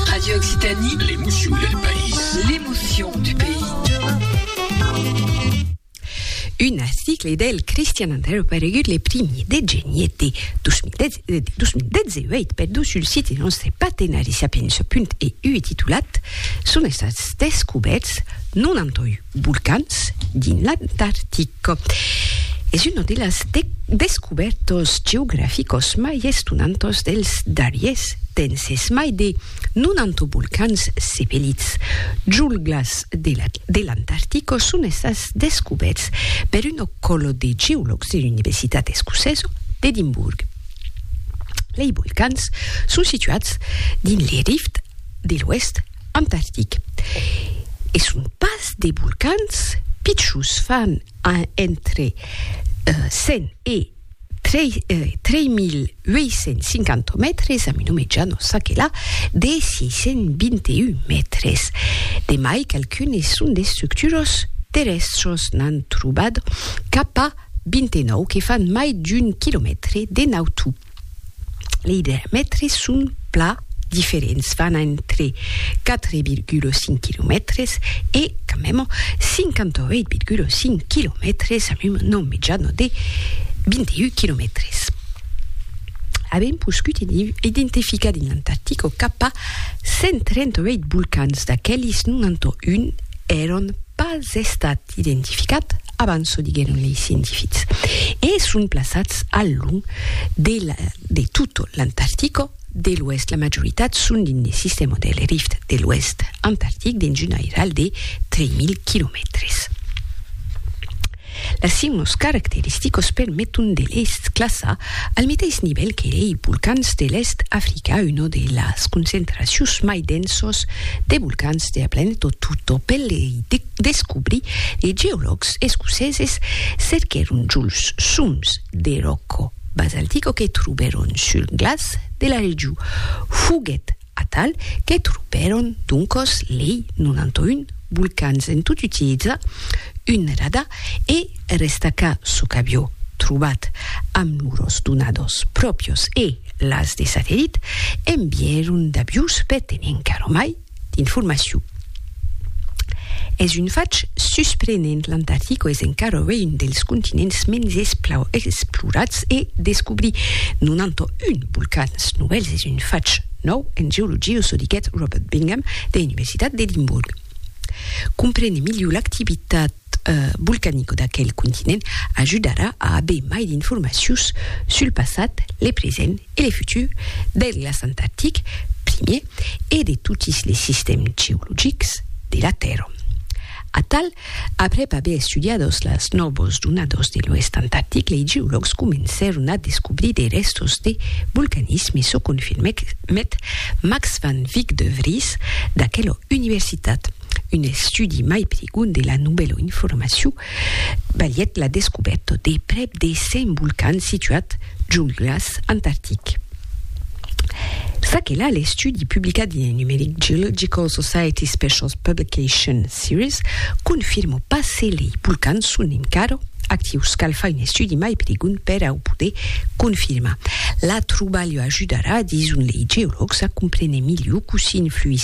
Radio Occitanie. L'emotion del país. L'emotion du pays. Un article del Christian Andreu paregut le primi de geniet de 2018 per dur sul site nostre partenari sapiença.eu titulat Son estats descoberts 91 volcans dins l'Antartic. Es una de las descubèrtas geograficas mai estonantas dels darriers temps. Es mai de 90 volcans sepelits julhglas de l'Antartica son estats descubèrts per una còla de geològs de l'Universitat Escocesa d'Edimburg. Lei volcans son situats dins le rift de l'oèst Antartic. E son pas de volcans pichons, fan entre 100 e 3.850 mètres, amb una mejana çà que là de 621 mètres. De mai qualqu'unes son d'estructuras terrèstras, n'an trobat cap a 29 que fan mai d'un quilomètre de nautu. lei diamètres son plan diferents, van entre 4,5 quilomètres e, quand même, 58,5 quilomètres amb un nom mitjano de 21 quilomètres. Avèm poscut identificar dins l'Antartico cap a 138 volcans, d'aquelis 91 èran pas estats identificat abans, çò diguèron lei scientifics, e son plaçats al long de la de tot l'Antartica de l'Oèst. La majoritat son dins de sistèma del Rift de l'Oèst antartic dins un airal de 3.000 quilomètres. Las seuas caracteristicas permeton de les classar al meteis nivèl que lei volcans de l'Èst Africa, una de las concentracions mai densas de volcans de la planeta tota, per lei descobri de geològs escoceses cerquèron Jules soms de ròco basaltico que trobèron sul glaç de la regiu. Foguèt atal que trobèron doncòs lei 91 volcans en tot utilizar un radar e restacar çò qu'avió trobat amb lors donadors pròpios e las de satellit, envièron d'avius per tenir encara mai d'informacion. Es un fach susprenent, l'Antartica es encara uei un dels continents mens esplorats e descobrir 91 volcans novèls es un fach nòu en geologia, çò diguèt Robert Bingham de l'Universitat d'Edimborg. Comprene miliu l'activitat volcanico d'aquel continent ajudarà a aver mai d'informacions sul passat, le present e le futur del glaç antartic primier e de totis les sistèms geologics de la Tèrra. Atal, aprèp aver estudiados las nòvas donadas de l'oèst antartic, lei geològs comencèron a descobrir de rèstos de volcanisme, çò confirmèt Max van Wyk de Vries d'aquela universitat. Un estudi mai prigond de la novèla informacion balhèt la descobèrta de prèp de 100 volcans situats junt glaç antartic. S'aquela l'estudi publicat dins Numeric Geological Society Specials Publication Series confirma pas se lei volcans son encara actius. Cal far un estudi mai prigond per au poder confirmar. La trobalha ajudarà, dison lei geològs, a comprene miliu cossí influís